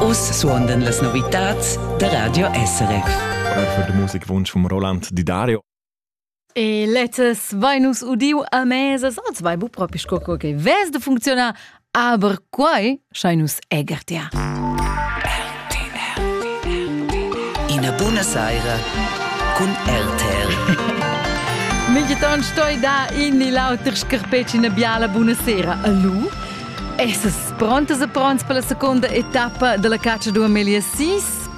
Uss suondan las novitads da Radio SRF. Für den Musikwunsch von Roland Di Dario. E letztes vai nus udiu a mesa, so zwei bu propi sco che ves de funcziona Aber quai schain nus eger tia. Ina buna saira cun RTR. Migiton stoi da in ni l'auter scarpeci una biala buonasera. Allo? Essas prontas e pronts per la seconda etappa della caccia du Amelia 6?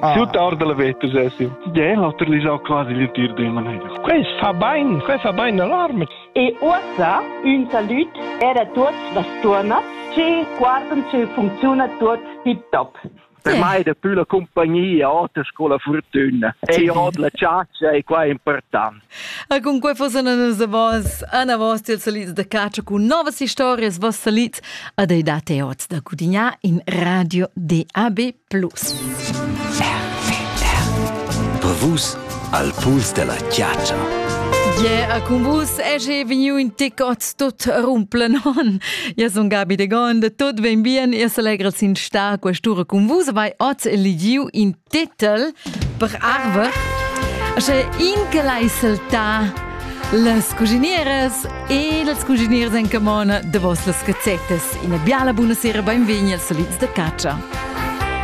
Ah. Tut ord la veta sessi. Tgei l'oter li sau quasi li tir de manera. Quei fa bein, quei fa bein alarme. E uossa un salut er a tuots las turnas che guardan ce funziona tuot tip top. Per mai è più la compagnia oter con la fortuna. E od la ciaccia è qua important. E con quei fossero a vos, Anna Vost, il salit da caccia con nuove storie, vos salit, ad ai date oz da cudignà in radio DAB Plus. Per vus al puls della chiaccia. Yeah, a cun vus è vegniu in tic oz tut rumplen on. Io sun Gabi de Gond, tot ben bien, io s'allegra sin sta quest'ura cun vus, vai oz eligiu in titel per arve. Sche in che l'hai saltà las cuginieres e las cuginieres en camona de vos las cazzettes. Ina biala buonasera, benvegni als solids de caccia.